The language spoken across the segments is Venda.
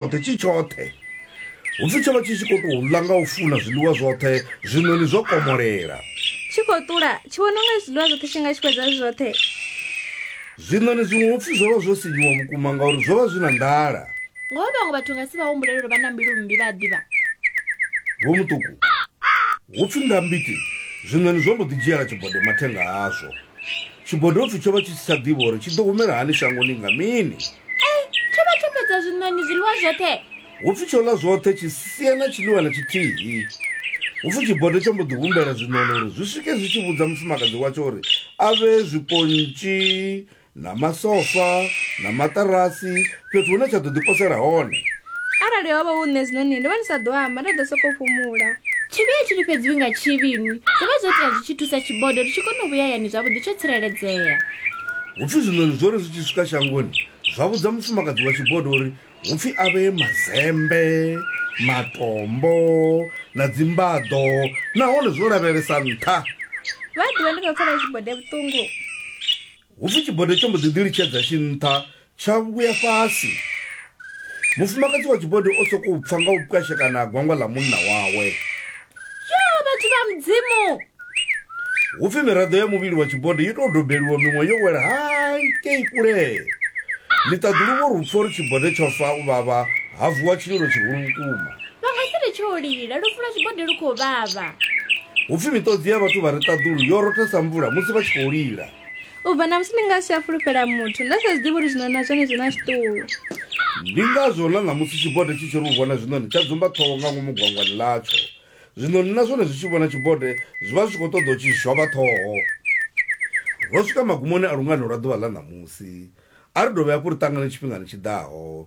tshoṱhe tshi tshoṱhe hupfi tsho vha tshi tshi khou tou ḽa nga u funa zwiḽiwa zwoṱhe zwiṋoni zwo komolela tshi khou ṱula tshi vhona unga zwiḽiwa zwoṱhe tshi nga tshi fhedza zwi zwoṱhe zwiṋoni zwiṅwe hupfi zwo vha zwo sinyiwa vhukuma ngauri zwo vha zwi na nḓala ngoho vhaṅwe vhathu nga si vha humbulele uri vha na mbilu mmbi vha a ḓivha vho muṱuku hupfi nga mbiti zwiṋoni zwo mbo ḓi dzhiela tshibodo mathenga azwo tshibodo hupfi tsho vha tshi si tsha ḓivha uri tshi ḓo humela hani shangoni nga mini E, tsho vha tsho fhedza zwiṋoni zwiḽiwa zwoṱhe. Hu pfi tsho ḽa zwoṱhe tshi sia na tshiḽiwa na tshithihi. Hu pfi tshibodo tsho mbo ḓi humbela zwiṋoni uri zwi swike zwi tshi vhudza mufumakadzi watsho uri a vhee zwipontshi na masofa na maṱarasi fhethu hune tsha ḓo ḓi posela hone. Arali ho vha hu nṋe zwiṋoni ndo vha ndi sa ḓo amba, nda ḓo sokou fhumula. Tshivhi a tshi lifhedziwi nga tshivhi inwi. Zwo vha zwo tea zwi tshi thusa tshibodo ri tshi kona u vhuya hayani zwavhuḓi tsho tsireledzea. Hu pfi zwiṋoni zwo ri zwi tshi swika shangoni zwa vhudza mufumakadzi wa Tshibodo uri hu pfi a vhee mazembe, matombo na dzimbaḓo nahone zwo lavhelesa nṱha. Vha ḓivha ndi khou pfela Tshibode vhuṱungu. Hu pfi Tshibode tsho mbo ḓi ḓilitshedza tshi nṱha tsha vhuya fhasi. Mufumakadzi wa Tshibode o sokou pfa nga u pwashekana ha gwangwa ḽa munna wawe. ya vhathu vha mudzimu hu pfi miraḓo ya muvhili wa tshibonde yo tou dobeliwa miṅwe yo wela hai kei kulee ni ṱaḓulu vho ri pfo ri tshibonde tsho fa u vhavha ha vuwa tshililo tshihulu vhukuma vha nga si ri tsho lila lu fula tshibonde lu khou vhavha hu pfi miṱodzi ya vhathu vha ri ṱaḓulu yo rotha sa mvula musi vha tshi khou lila u bva na musi ndi nga si a fulufhela muthu nda sa zwiḓivhi uri zwiṋoni na zwone zwi na zwiṱuhu ndi ngazwo na ṋamusi tshibode tshi tshi ri u vhona zwiṋoni tsha dzumba ṱhoho nga ngomu gwangwani ḽatsho zwiṋoni na zwone zwi tshi vhona tshibode zwi vha zwi tshi khou ṱoḓa u tshi zhwavha ṱhoho ro swika magumoni a lungano lwa ḓuvha ḽa ṋamusi a ri dovhe hafhu ri ṱangane tshifhingani tshi ḓaho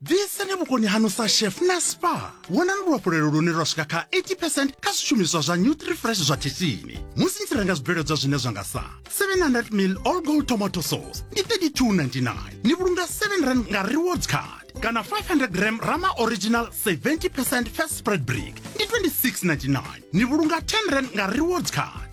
bviseni vhukoni hanu sa chef na spa wonani luhafhulelo lune lwa swika kha 80 percent kha zwishumiswa zwa nutri fresh zwa khishini musi ni tshi renga zwibveledzwa zwine zwa nga sa 700 mil all gold tomato sauce ndi 3299 ni vhulunga 7 rand nga rewards card kana 500 gram rama original 70 percent fast spread brick ndi 2699 ni vhulunga 10 rand nga rewards card